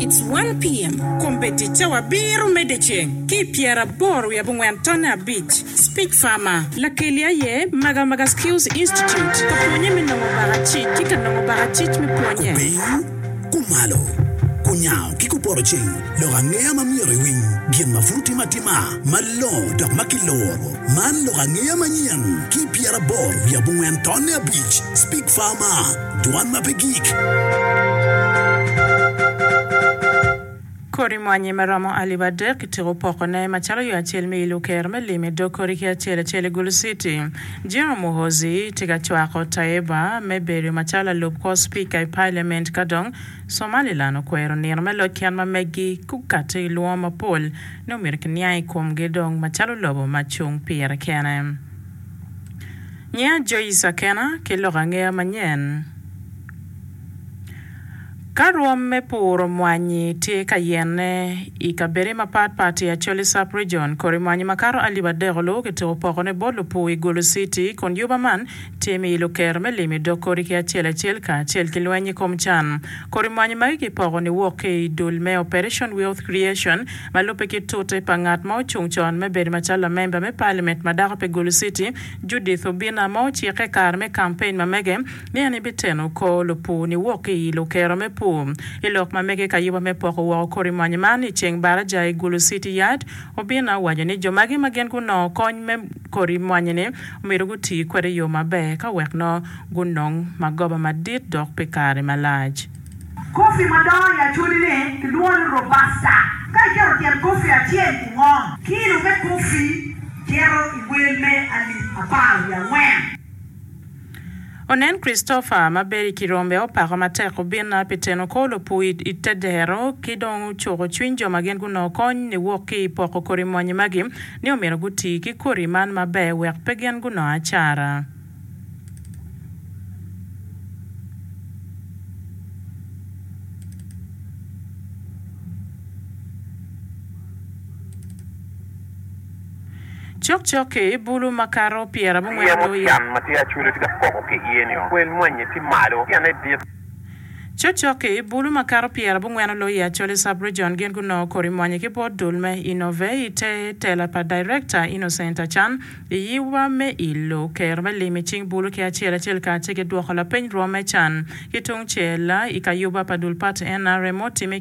It's one PM, Kombe tic cawa abiro mede ceng ki i pyera aboro wiye abongwen tonne abic. Speech Farmer. Lakeli aye Maga Maga Skills Institute ka pwonye me nongo baka cic ki ka nongo baka cic me pwonye. Kupiny, kumalo, kunyango ki kupoto cing lok angeya ma myero iwiny gin ma pud otime atima malongo dok ma kiluro. Man lok angeya manyen ki i pyera aboro wiye abongwen tonne abic. Speech Farmer. Dwan ma pe gik. Kodi mwanyi ma romo alip adek ityeko pokone macalo yo acel me ilo ker me lim i dog kodi ki acel acel i Gulu City. General Muhoozi tye ka cwako Tayebwa me bedo macalo lalub kor Spika i Parliament ka dong Somaliland okwero nino me loc kit ma megi gukato i lwongo mapol ni omyero kiniang i komgi dong macalo lobo ma cung pire kene. Nyinga Joyce Akena ki lok angeya manyen. Ka rwom me puro mwanyi tye ka yenne i kabedde mapat pat i Acholi Sub Region, kodi mwanyi makato alip adek oluwo ki tuko pokone bot lupur i Gulu City kun juba man tye me ilo kero me limo i dog kodi ki acel acel kacel ki lweny i kom can. Kodi mwanyi magi kipoko niwok ki i dul me Operation Wealth Creation Ma lubbe ki tute pa ngat ma ocung con me bedo macalo lamemba me paliament ma dako pe Gulu Citi, Judith Obina ma ocikke i kare me kampein ma mege ni en ebiteno kor lupur ni wok ki i lukero me pur. I lok ma mege kayuba me poko woko kodi mwanyi man i ceng baraja i Gulu Citi Yard, Obina owaco ni jo magi ma gin gunongo kony me kodi mwanyi ni omyero guti kwede i yo maber ka wek nongo gunong magoba madit dok pi kare malac. Kofi madongo i acoli-ni kilwongo ni robusta. Ka iketo tyen kofi acel i ngom, kilo me kofi cito i wel me alip apar wiye angwen. Onen Christopher ma bedo i Kirombe opako matek obinna pi teno kor lopur i te dero ki dong cuko cwiny jo ma gin gunongo kony niwok ki i poko kodi mony magi ni omyero guti ki kodi man maber wek pe gin gunong acara. Cokcok-ki, bulu makato pyerabongwen ki oyo. Cokcok-ki, bulu makato pyerabongwen oloyo i Acholi Sub-Region. Gin gunongo kodi mwanye ki bot dul me Innovate i te tela pa Director Innocent Achan. I yiwa me ilo kero me lim i cing bulu ki acel acel kacel ki dwoko lapeny rwom me can ki tungcel i kayuba pa dul pati nrm otimme,